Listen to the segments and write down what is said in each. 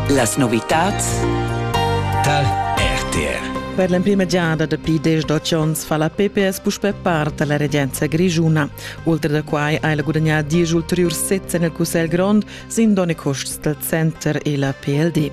Las novitads Tal RTR Per l'emprima giada dapi diesch onns fa la PPS puspè part da la regenza grischuna. Ultra da quai ha ella gudagnà diesch ulteriurs sezs en il Cussegl grond sin donn e custs dal center e la PLD.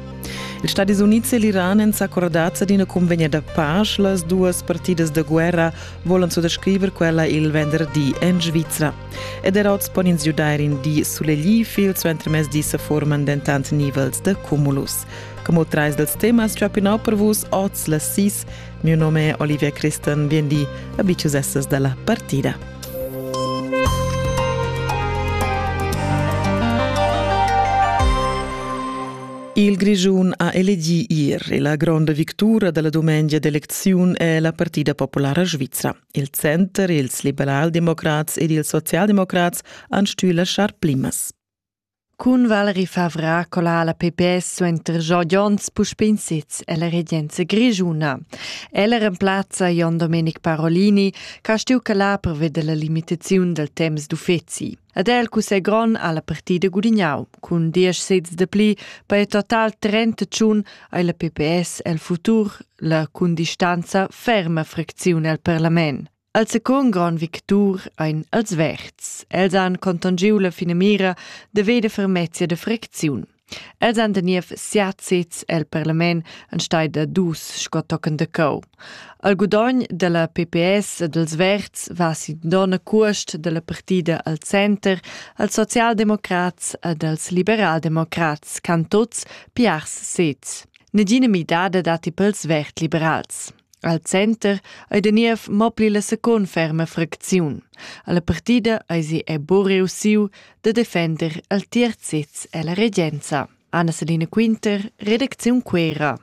Ils Stadis Unids e l'Iran èn s'accordats ad ina cunvegna da pasch. Las duas partidas da guerra volan suttascriver quella il venderdi en Svizra. Ed er oz pon ins giudair in di sulegli, fil suentermezdi se forman dentant nivels de cumulus. Como trais dels temas giapinau per vus oz las sis. Mio nome è Olivia Christen, bien di, abicius essas della partida. Il Grischun ha elegì ier e la gronda victura da la dumengia d'elecziun è la Partida Populara Svizra. Il center, ils liberaldemocrats ed ils socialdemocrats han stuì laschar plimas. Cun Valerie Favra cola la PPS suenter Giorgio Jons puspè in sez ella regenza grischuna. Ella remplazza Jon Domenic Parolini, che ha stuì calar pervia della limitaziun del temps d'uffizi. Ed el cussegl grond ha la partida gudignau cun diesch sezs de pli per il total trentacun ei la PPS el futur la cun distanza ferma fracziun el parlament. Al secund grand victur ein els verds. Els han contongiu la finamira de veder fermezia de fracziun. Els han da niev siat sezs el parlament en stai da dus sco tochen de cau. Al gudogn della PPS e dels Verds va sin dona cuost della partida al center als socialdemocrats ed als liberaldemocrats can tots piars sez. Negina midada datti pels vert-liberals. Al center ei da niev mo pli la secund ferma fracziun. Alla partida eisi buca reussiu da defender al tier sez ella regenza. Anna-Selina Quinter, redacziun Quera.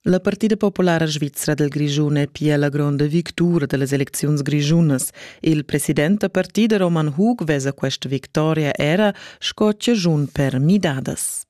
La Partida Populara Svizra del Grischun è pia la gronda victura dellas elecziuns grischunas. Il president da partida Roman Hug vesa questa victoria era sco ciagiun per midadas.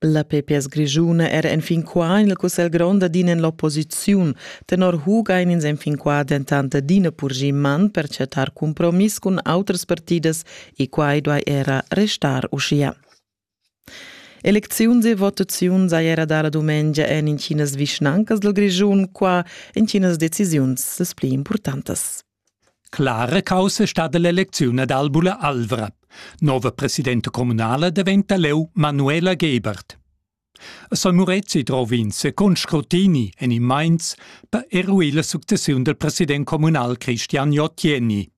La PPS grischuna era enfin qua en il cussegl grond adina en l'opposiziun. Tenor Huga ein ins enfin qua dentant adina purgì man per chattar compromiss cun autras partidas e quai duai era restar uschia. Elecziuns e votaziun sai era dar la dumengia en intginas vischnancas dal Grischun, qua intginas decisiuns las pli importantas. Clara caussa stat l'elecziun ad Albula Alvra. Nova presidenta communala diventa leu Manuela Gebert. A San Murezi drov ins con scrutini en in Mainz per eruir la successiun del president communal Christian Jottieni.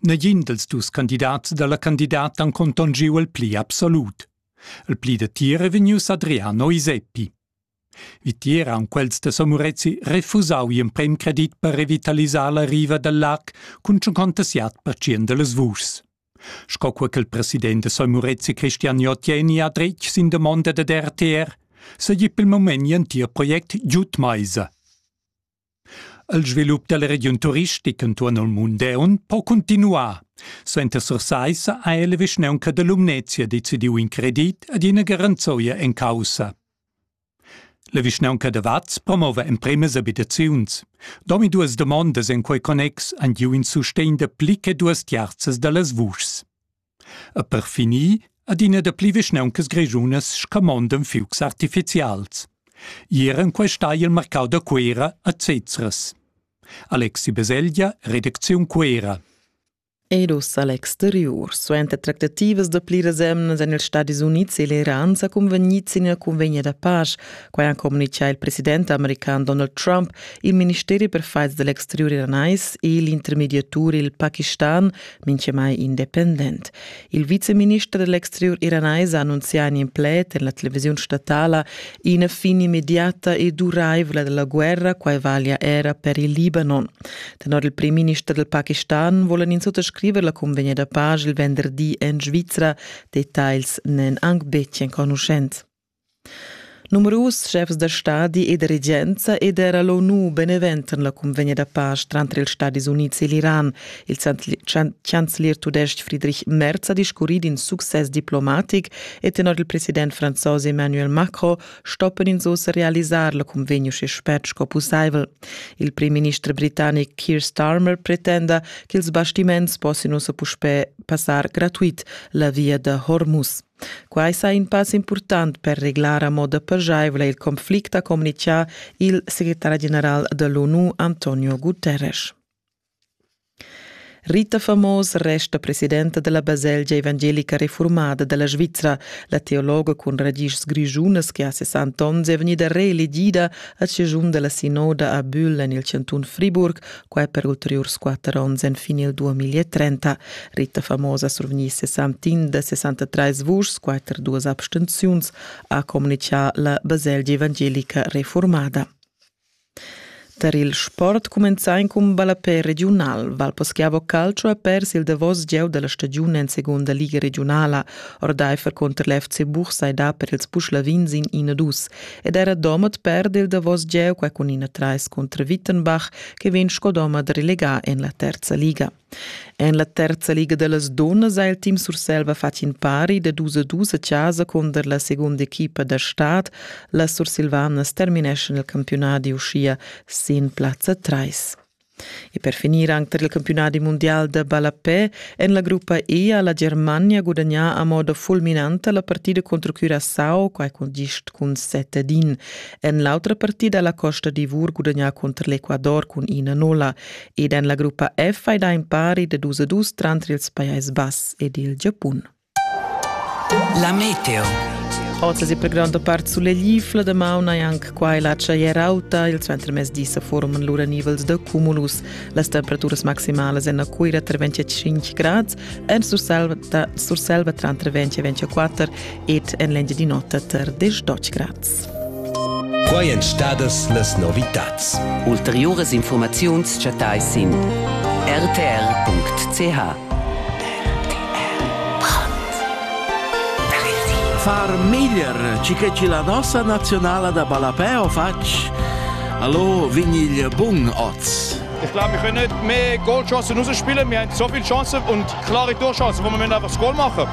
Negin dels dus candidats dalla candidata han contongiu il pli absolut. Il pli da tira vegnius Adriano Iseppi. Vitier han quels da Somurezi refusau gl'emprem credit per revitalisar la riva dal lac cun tschuncontassiat per tschien dallas vuschs. Sco co quel president da Somurezi Christian Jotieni ha dretg sin damonda dad RTR, seigi per il moment gl'entir project giud meisa. Il svilup dalla regiun turistica entuorn il mund deun po cuntinuar. Suenter Sursaissa ha la vischnaunca da Lumnezia decidiu in credit ed ina garanzia en caussa. La vischnaunca da Vaz promova empremas abitaziuns. Domi duas domondas en quei connex han giu in sustegn da pli che duas tiarzas dallas vuschs. E per finir adina da pli vischnauncas grischunas scamondan fiugs artificials. Ier en questa il marcau da Cuera a Cezres. Alexi Beselja, redacziun Cuera. Ed uss a l'exterior. Suenter tractativas da pliras emnas en ils Stadis Unids e l'Iran sa cunvegnids ina cunvegna da pace. Quai ha communitgà il president american Donald Trump, il ministeri per faids dell'exterior iranais e l'intermediatur il Pakistan minchemai independent. Il viceminister dell'exterior iranais ha annunzià in pled en la televisiun statala ina fin immediata e duraivla della guerra, quai valia era per il Libanon. Tenor il premierminister del Pakistan volen ins sottascriver la convegna da page il venderdi en Svizra. Details n'en anc betg enconuschents. Numerus schefs da stadi e da regenza ed era l'ONU beneventan la cunvegna da pace tranter ils Stadis Unids e l'Iran. Il chancelier tudestg Friedrich Merz ha discurrì d'in success diplomatic e tenor il president franzos Emmanuel Macron stoppan ins ussa realisar la cunvegna uschè spert sco pussaivel. Il primminister britannic Keir Starmer pretenda ch'ils bastiments possian ussa puspè passar gratuit la via da Hormuz. Quai sa in pass impurtant per reglar a moda pajevla il conflict, ha communichà il secretari general da l'ONU Antonio Guterres. Rita Famos resta presidenta della baselgia evangelica reformada della Svizzera. La teologa cun radices grigiunas che ha 60 onns è vegnida reelegida a cigiun della sinoda a Bühl en il cantun Friburg Quai per ulteriurs quatter onns enfin il 2030. Rita Famosa survegni 61 da 63 vuschs, quatter duas abstenziuns, ha comunicà la baselgia evangelica reformada. Tar il sport cumenzà in cun ballapé regiunal. Valposchiavo Calcio ha pers il davos gieu della stagione in seconda liga regionala. Ordeifer contr l'FC Buch sai da per ils Puschlavins in 1-2. ed era Domat perd il davos gieu qua cun ina trais contra Wittenbach che vegn sco Domat relegà en la terza liga. En la terza liga da las dunnas ha il team Surselva fatg in pari da dus a dus a casa conter la segunda equipa da stad. La Sursilvanas termineschan il campionat uschia sin plazza 3. E per finir anc tar il campiunadi mundial da ballapè en la gruppa E ha la Germania gudagnà a moda fulminanta la partida contro Curaçao, quai cun gist cun set ad in. En l'autra partida la Costa d'Ivor gudagnà contro l'Ecuador cun ina nolla. Ed en la gruppa F hai dà impari da dus a dus tranter ils Pajais Bass ed il Giapun. La meteo. Oz è per gronda part suleglifla da mauna e anche qua e la tschaier auta. Il suentermezdi se forman lura nivels da cumulus. Las temperaturas maximalas en Cuira tra 25 grad, en Surselva, Surselva tra 20 e 24 ed en l'engia di notte tra 10 grad. Quai èn stadas las novitads. Ulteriuras infurmaziuns chattais sin rtr.ch. Far meglier ci che ci la nossa nazionala da ballapè o facc? Hallo, vin il bun oz. Ich glaube, wir können nicht mehr Goalchancen rausspielen. Wir haben so viele Chancen und klare Torchancen, wo wir einfach das Goal machen.